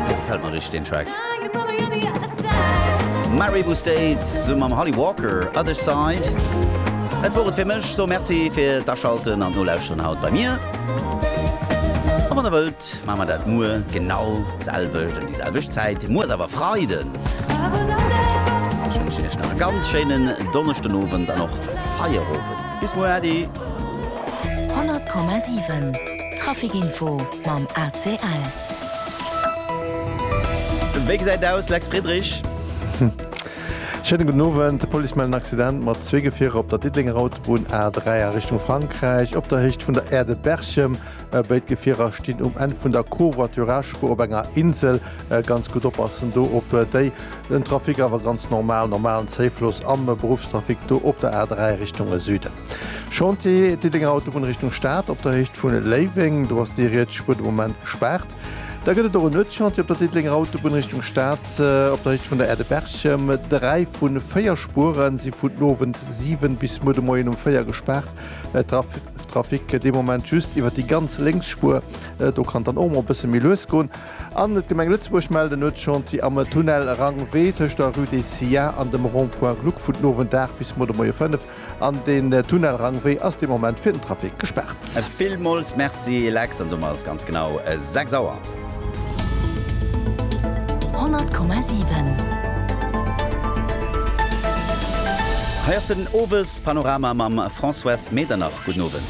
Dee gefält mer richteg deen Track. Mary Wu State summen mam Holly Walker, Other Side. Dat wor et fir mech. So Merci fir d'Aschalten an d'Nolauschteren haut bei mir. A wann der wëllt, maache mer dat muer genau d'selwecht ëm déi selwecht Zäit. Muer ass awer Freiden. Ech wënschen iech nach e ganz schéinen Donneschdenowend an och Feierowend. Bis muer Äddi. 100,7 Traffic Info. mam ACL. Wéi gesäit aus, Lex Friedrich? Schéine gudden Owend. D'Police mellt en Accident mat zwee Gefierer op der Diddelenger Autobunn A3 a Richtung Frankräich, op der Héicht vun der Aire de Berchem. Béid Gefierer stinn um Enn vun der Covoiturage-Spuer op enger Insel. Ganz gutt oppassen do op déi. Den Trafic awer ganz normal, normalen Zéifloss am Beruffstrafic do op der A3 Richtung Süden. Chantier Diddenger Autobunn Richtung Stad op der Héicht vu Léiweng. Do ass déi rietsch Spur de Moment gespaart. Da gëtt et och en Nuetschantier op der Diddelenger Autobunn Richtung Stad op der Héicht vun der Är de Berchem. Dräi vu véier Spure si vun den Owend 7 bis muer de Moien um 4 gespaart. Trafic dee Moment just iwwer déi ganz lénks Spur. Do kann et dann och mol e bësse méi lues goen. An d'Gemeng Lëtzebuerg mellt en Nuetschantier am Tunnel Rang-W tëscht der Rue des Sciats an dem Rond-Point Gluck vun den Owend 8 bis muer de Moie 5. An den Tunnel Rangwee ass de Moment fir den Trafic gespaart. Villmools Merci Lex, an domat ass ganz genau 6 Auer. 100,7. Hei ass den Owes Panorama mam Françoise Medernach. Gudden Owend.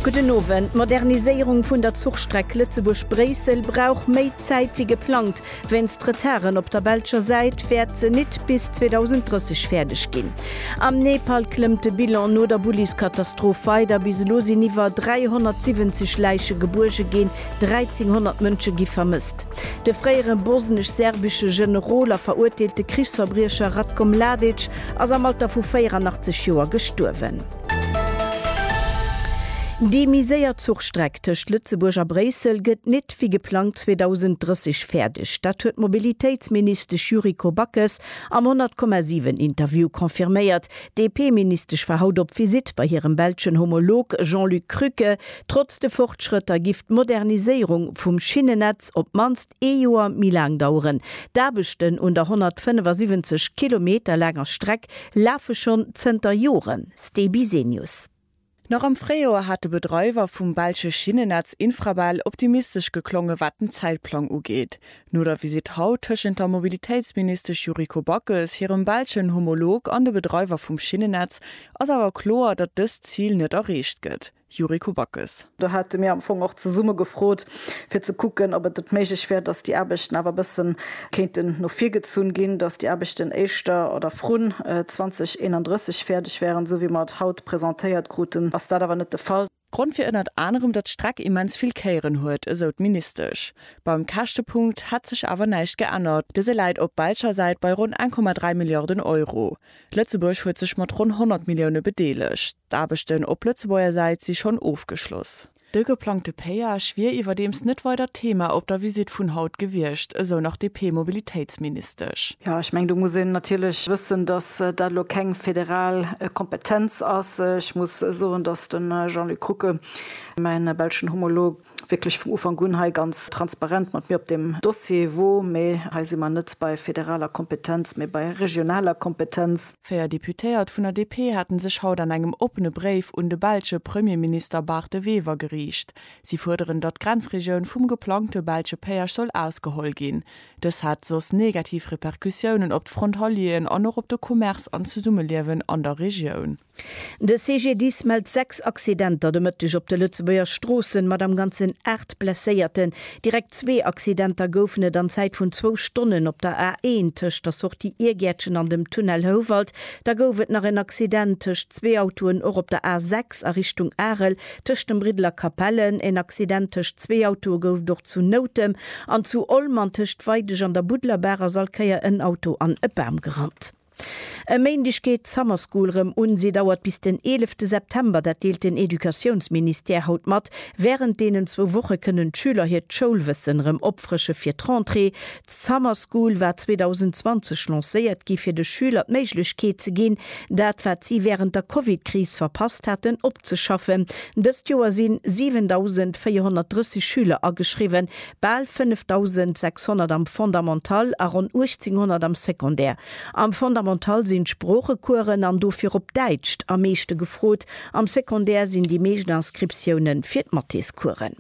Gudden Owend. D'Moderniséierung vun der Zuchstreck Lëtzebuerg-Bréissel brauch méi Zäit wéi geplangt. Wéinst Retarden op der belscher Säit wäert se nit bis 2030 fäerdeg ginn. Am Nepal klëmmt de Bilan no der Bulliskatastroph weider. Bis elo sinn iwwer 370 Läiche gebuerge ginn, 1.300 Mënsche gi vermësst. De fréiere bosnesch-serbesche Generol a verurteelte Krichsverbriecher Ratko Mladic ass am Alter vu 84 Joer gestuerwen. Déi méi séier Zuchstreck tëscht Lëtzebuerg a Bréissel gëtt nit wéi geplangt 2030 fäerdeg. Dat huet d'Mobilitéitsministesch Yuriko Backes am 100,7 Interview confirméiert. D'DP-Ministesch war haut op Visitt bei hirem belschen Homolog Jean-Luc Krücke. Trotz de Fortschrëtter giff d'Moderniséierung vum Schinnennetz op d'mannst ee Joer méi laang daueren. D'Aarbechten un der 175 Kilometer laanger Streck lafe schonn zënter Joren. Ste Bisenius. Nach am Fréijoer hat de Bedreiwer vum belsche Schinnennetz Infrabel optimistesch geklongen, wat den Zäitplang ugeet. No der Visitt haut tëschent der Mobilitéitsministesch Yuriko Backes hirem belschen Homolog an de Bedreiwer vum Schinnennetz ass awer kloer, datt dëst Zil net erreecht gëtt. Yuriko Backes. Do hate mir am Fong och zesumme gefrot, fir ze kucken, ob et net méiglech wär, dass déi Aarbechten awer e bësse kéinten no vir gezunn ginn, dass déi Aarbechten éischter oder vrun 2031 fäerdeg wäeren, esou wéi mer et haut presentéiert kruten, ass dat awer net de Fall. Grond wier ënnert anerem, datt d'Streck immens vill Kéieren huet, esou d'Ministesch. Beim Käschtepunkt hätt sech awer näischt geännert, dëse läit op belscher Säit bei ronn 1,3 Milliarden Euro. Lëtzebuerg huet sech mat ronn 100 Millioune bedeelegt. D'Aarbechten op Lëtzebuerger Säit si schonn ofgeschloss. De geplangte Péage wier iwwerdeems net weider d'Thema op der Visitt vun haut gewiescht, esou nach d'DP-Mobilitéitsministesch. Jo, ech mengen, do muss een natierlech wëssen, datt dat elo keng federal Kompetenz ass. Ech muss soen, datt de Jean-Luc Rucke, mäi belschen Homolog, wierklech vum Ufank un hei ganz transparent mat mir op deem Dossier wor, mee hei si mer net bei federaler Kompetenz, mee bei regionaler Kompetenz. Véier Deputéiert vun der DP hate sech haut an engem oppene Bréif un de belsche Premierminister Bart De Wever geriicht. Si fuerderen, datt d'Grenzregioun vum geplangte belsche Péage soll ausgeholl ginn. Dës hätt soss negativ Repercussiounen op d'Frontalieren an och op de Commerce an d'Zesummeliewen an der Regioun. De CGDIS mellt 6 Accidenter de Mëtteg op de Lëtzebuerger Stroossen, mat am Ganzen 8 Blesséierten. Direkt zwee Accidenter goufen et an Zäit vun zwou Stonnen op der A1 tëscht der Sortie Iergäertchen an dem Tunnel Houwald. Da gouf et nach en Accident tëscht zwee Autoen och op der A6 a Richtung Arel tëscht dem Briddel a Capellen. En Accident tëscht zwee Autoe gouf et och zu Noutem an zu Olm. An tëscht Weidesch an der Budlerbaach ass all Kéier en Auto an e Bam gerannt. E Méindeg geet d'Summer School rëm un. Si dauert bis den 11 de September, dat deelt den Educatiounsministère haut mat. Wärend deenen zwou Woche kënnen d'Schüler hiert Schoulwëssen rëm opfrësche fir d'Rentrée. D'Summer School war 2020 lancéiert gi fir de Schüler d'Méiglechkeet ze ginn, dat wat si wärend der Covid-Kris verpasst haten, opzeschaffen. Dëst Joer sinn 7.430 Schüler ageschriwwen, Bal 5600 am Fondamental a ronn 1800 am Secondaire. Am Fondamental sinn d'Sproochecoursen, an do virop Däitscht, am meeschte gefrot, am Secondaire sinn déi meescht Inscriptioune fir d'Mathéscoursen.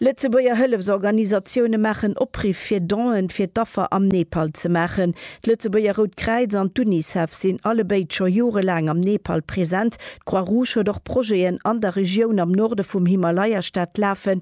Lëtzebuerger Hëllefsorganisatioune maachen Opriff fir Donen fir d'Affer am Nepal ze maachen. D'Lëtzebuerger Rout Kräiz an d'Unicef sinn allebéid scho jorelaang am Nepal present. D'Croix-Rouge huet och Projeten an der Regioun am Norde vum Himalaya-Staat lafen,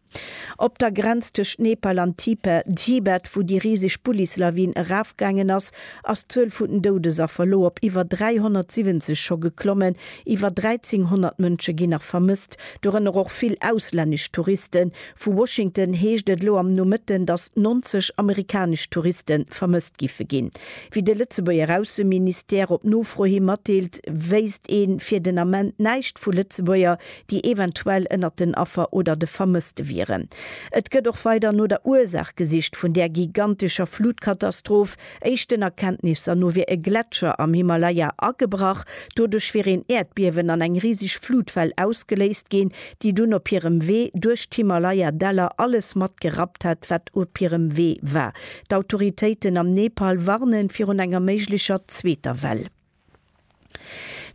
Op der Grenz tëscht Nepal an Tipe, Tibet, wou déi riseg Bullis-Lawin erafgaangen ass, ass d'Zuel vun den Doudesaffer elo op iwwer 370 scho geklommen. Iwwer 1.300 Mënsche ginn nach vermësst, dorënner och vill auslännesch Touristen. Vu Washington heescht et elo am Nomëtten, datt 90 amerikanesch Touriste vermësst giffe ginn. Wéi de Lëtzebuerger Ausseministère op Nofro hi matdeelt, wéisst ee fir den Ament näischt vu Lëtzebuerger, déi eventuell ënnert den Affer oder de Vermësste wieren. Et gëtt och weider no der Ursaach gesicht vun där gigantescher Flutkatastroph. Éischten Erkenntnisser no wier e Gletscher am Himalaya agebrach. Doduerch wier een Äerdbiewen an eng riseg Flutwell ausgeléist ginn, déi dunn op hirem Wee duerch d'Himalaya-Däller alles mat gerappt hätt, wat op hirem Wee war. D'Autoritéiten am Nepal warnen virun enger méiglecher zweeter Well.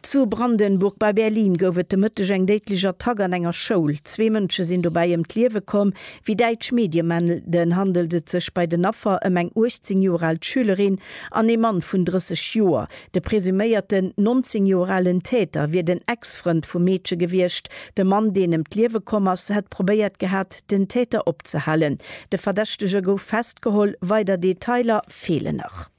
Zu Brandenburg bei Berlin gouf et de Mëtteg eng déidlech Attack an enger Schoul. Zwee Mënsche sinn dobäi ëm d'Liewe komm. Wéi däitsch Medie melden, handelt et sech bei den Affer ëm eng 18 Joer al Schülerin an ee Mann vun 30 Joer. De presuméierten 19 Joer alen Täter wier den Ex-Frënd vum Meedche gewiescht. De Mann, deen ëm d'Liewe komm ass, hätt probéiert gehat, den Täter opzehalen. De Verdächtege gouf festgeholl, weider Detailer feelen nach.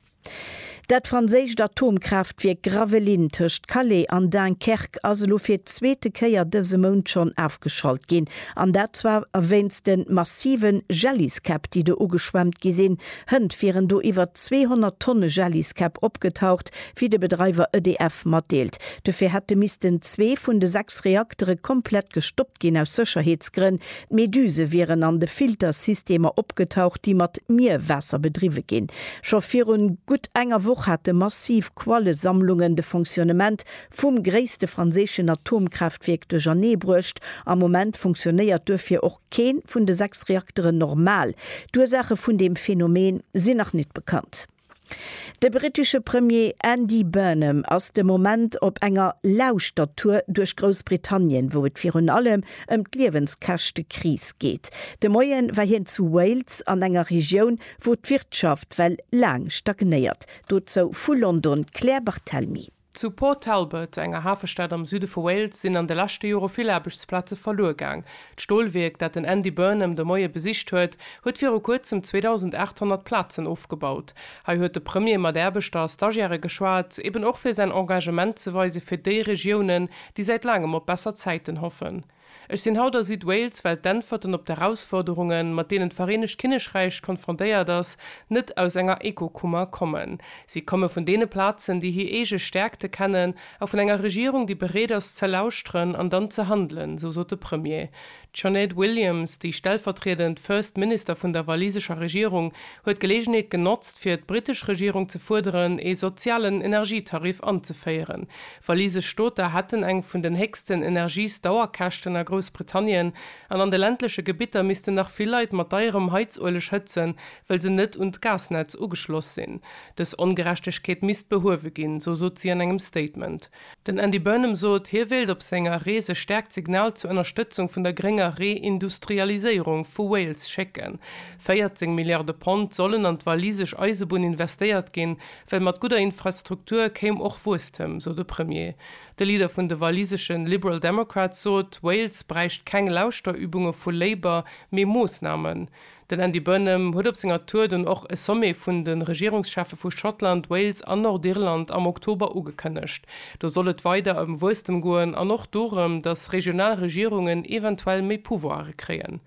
Dat franséischt Atomkraaftwierk Gravelines tëscht Calais an Dunkerque ass elo fir d'zweete Kéier dëse Mount schonn ofgeschalt ginn. An dat zwar wéinst de massive Jelliskäpp, déi do ugeschwemmt gi sinn. Hënt wieren do iwwer 200 Tonne Jelliskäpp opgetaucht, wéi de Bedreiwer EDF matdeelt. Dofir hätte missten zwee vun de sechs Reaktere komplett gestoppt ginn, aus Sécherheetsgrënn. D'Meduse wieren an de Filtersystemer opgetaucht, déi mat Mierwaasser bedriwwe ginn. Scho virun gutt enger Woch hate massiv Quallesammlungen de Fonctionnement vum gréisste franséischen Atomkraaftwierk duerchernee bruecht. Am Moment funktionéiert duerfir och kee vun de sechs Reakteren normal. D'Ursaache vun deem Phänomen sinn nach net bekannt. De brittesche Premier Andy Burnham ass de Moment op enger Lauschtertour duerch Groussbritannien, wou et virun allem ëm d'Liewenskäschtekris geet. De Moie war hien zu Wales, an enger Regioun, wou d'Wirtschaft well laang stagnéiert. Dozou vu London d'Claire Barthelmy. Zu Port Talbot, enger Hafestad am Süde vu Wales, sinn an de leschte Jore vill Aarbechtsplaze verluer gaang. D'Stolwierk, dat den Andy Burnham de Moie besicht huet, huet viru kuerzem 2.800 Plazen ofgebaut. Hei huet de Premier mat Aarbechter a Stagiairë geschwat, eben och fir säin Engagement ze weise fir déi Regiounen, déi säit laangem op besser Zäiten hoffen. Ech sinn haut a Südwales, well d'Äntwerten op d'Erausforderungen, mat deenen d'Vereenegt Kinnekräich konfrontéiert ass, net aus enger Ekokummer kommen. Si komme vun deene Plazen, déi hir eege Stäerkte kennen, a vun enger Regierung, déi bereet ass ze lauschteren an dann ze handelen, esou sot de Premier. D'Sinéad Williams, déi stellvertriedend First Minister vun der walisescher Regierung, huet d'Geleegenheet genotzt, fir d'britesch Regierung ze fuerderen, ee sozialen Energietarif anzeféieren, Walise Stooter hätten eng vun den héchsten Energiesdauerkäschten a Groussbritannien an an de ländleche Gebitter missten nach vill Leit mat deierem Heizueleg hëtzen, well se net un d'Gasnetz ugeschloss sinn. Dës Ongerechtegkeet misst behuewe ginn, sou sot si an engem Statement. Den Andy Burnham sot, hie wéilt op senger Rees e staarkt Signal zur Ënnerstëtzung vun der grénger Reindustrialiséierung vu Wales schécken. 14 Milliarde Pond sollen an d'walisesch Eisebunn investéiert ginn, Well mat gudder Infrastruktur kéim och Wuesstem, sou de Premier. De Leader vun de waliseschen Liberal Democrats sot, Wales bräicht keng Lauschterübunge vu Labour, mee Moossnamen. Den Andy Burnham huet op senger Tour dunn och e Sommet vun de Regierungscheffe vu Schottland, Wales an Nordirland am Oktober ugekënnegt. Do soll et weider ëm Wuesstem goen an och dorëm, datt regional Regierungen eventuell méi Pouvoire kréien.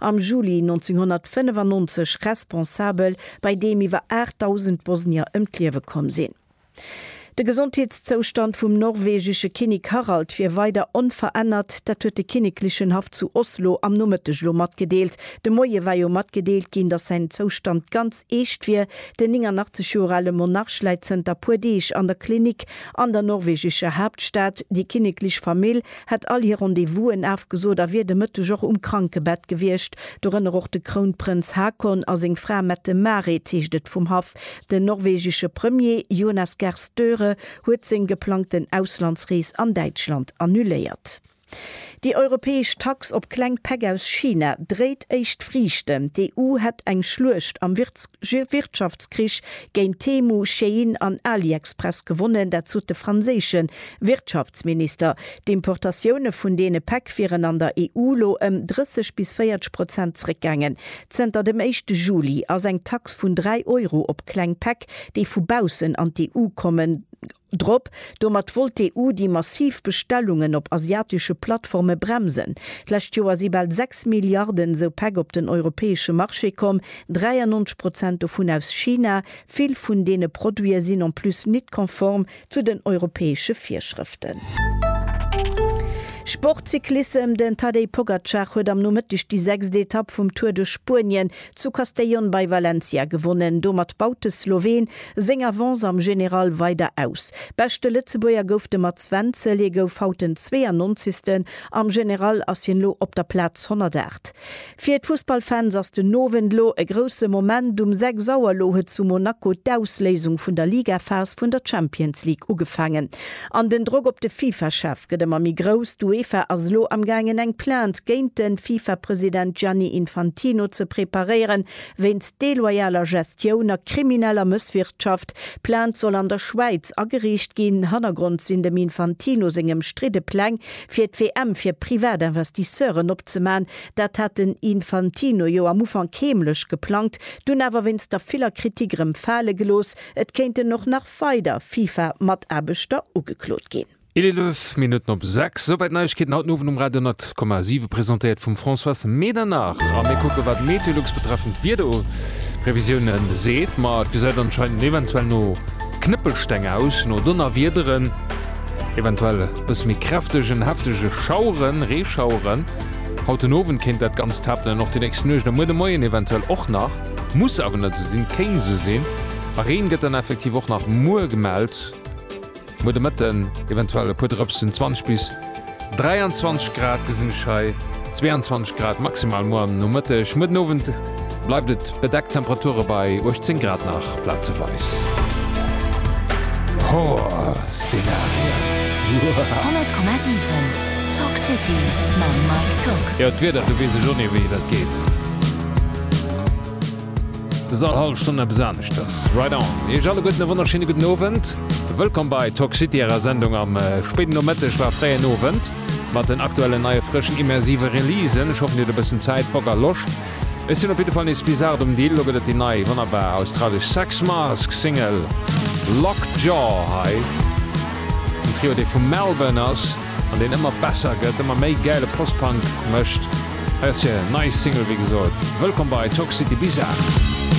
am Juli 1995 responsabel, bei deem iwwer 8.000 Bosnier ëm d'Liewe komm sinn. De Gesondheetszoustand vum norwegesche Kinnek Harald wier weider onverännert, dat huet de kinneklechen Haff zu Oslo am Nomëtteg elo matgedeelt. De Moie war jo matgedeelt ginn, datt säin Zoustand ganz eescht wier. Den 89 Joer ale Monarch läit zënter puer Deeg an der Klinik an der norwegescher Haaptstad. Déi kinneklech Famill. hätt all hir Rendez-vousen afgesot a wier de Mëtteg och um Krankebett gewiescht, dorënner och de Krounprënz Haakon a seng Fra Mette-Marit, heescht et vum Haff. Den norwegesche Premier Jonas Gahr Støre huet seng geplangten Auslandsrees an Däitschland annuléiert. Déi europäesch Tax op kleng Päck aus China dréit éischt Friichten. D'EU hätt eng Schluecht am Wirtschaftskrich géint Temu, Shein an AliExpress gewonnen, dat sot de franséische Wirtschaftsminister, D'Importatioune vun deene Päck wieren an der EU lo ëm 30 bis 40 Prozent zréckgaangen. Zënter dem éischte Juli ass eng Tax vun 3 Euro op kleng Päck, déi vu baussen an d'EU kommen, drop. Domat wollt d'EU déi massiv Bestellungen op asiatesche Plattforme bremsen. D'lescht Joer si bal 6 Milliarden esou Päck op den europäesche Marché komm, 93 Prozent dovun aus China. Vill vun deene Produite sinn en plus nit konform. Zu den europäesche Virschrëften. Sport, Cyclissem, Den Tadej Pogacar huet am Nomëtteg déi sechst Etapp vum Tour de Spuenien zu Castellón bei Valencia gewonnen. Domat baut de Sloween seng Avance am General weider aus. Beschte Lëtzebuerger gouf de Mats Wenzel, hie gouf haut den 92. Am General ass hien elo op der Plaz 108. Fir d'Fussballfans ass den Owend lo e grousse Moment, Um 6 Auer lo huet zu Monaco d'Ausléisung vun der Ligaphas vun der Champions League ugefaangen. An den Drock op de Fifa-Chef gëtt ëmmer méi grouss. D'Uefa ass lo am gaangen eng Plainte géint de Fifa-President Gianni Infantino ze preparéieren, wéinst deloyaler Gestioun a krimineller Mësswirtschaft. D'Plainte soll an der Schwäiz ageriicht ginn. Hannergrond sinn dem Infantino seng ëmstridde Pläng fir d'WM fir Privatinvestisseuren opzeman, Dat hat den Infantino jo am Ufank heemlech geplangt, dunn awer wéinst der viller Kritik erëm fale gelooss. Et kéinten och nach weider FIFA-Mataarbechter ugeklot ginn. Eelef Minutten op sechs. Souwäit d'Neiegkeeten haut den Owend um Radio 10,7, presentéiert vum Françoise Medernach. A mir kucke wat d'Meteolux betreffend d'Wiederprevisioune seet. Ma et gesäit anscheinend eventuell no Knëppelsteng aus, no Donnerwiederen, eventuell e bësse méi kräftegen, heftege Schaueren, Reeschaueren. Haut den Owend kéint dat Ganzt happelen, och déi nächst Nuecht a muer de Moien eventuell och nach. Muss awer net esou sinn, kéint esou sinn. A Reen gëtt dann effektiv och nach muer gemellt. Muer de Mëtten eventuell e puer Drëpsen, 20 bis 23 Grad gesinn ech hei, 22 Grad maximal muer am Nomëtteg. Muer den Owend. Bleift et bedeckt, Temperature bei 18 Grad nach plazeweis. Horrorszenarien. 100,7 Talk City mam Mike Tock. Jo, d'Wieder, do weess ech och ni wéi dat geet. Et ass all hallef Stonn eppes aneschters. Right on. Iech alleguerten e wonnerschéine gudden Owend. Wëllkomm bei Talk City, ärer Sendung am spéiden Nomëtteg, war fréien Owend. Mat den aktuellen, neie, frëschen, immersive Releasen. Ech hoffen dir hutt e bëssen Zäit, Bock a Loscht. Ech sinn op jidde Fall nees bizart um Dill. Lo gëtt et déi nei, wonnerbar australesch Sex Mask Single Lockjaw hei. En Trio dee vu Melbourne ass an deen ëmmer besser gëtt, ëmmer méi gäile Post-Punk mécht. Hei ass hir nei Single wéi gesot. Wëllkomm bei Toxicity Bizarre.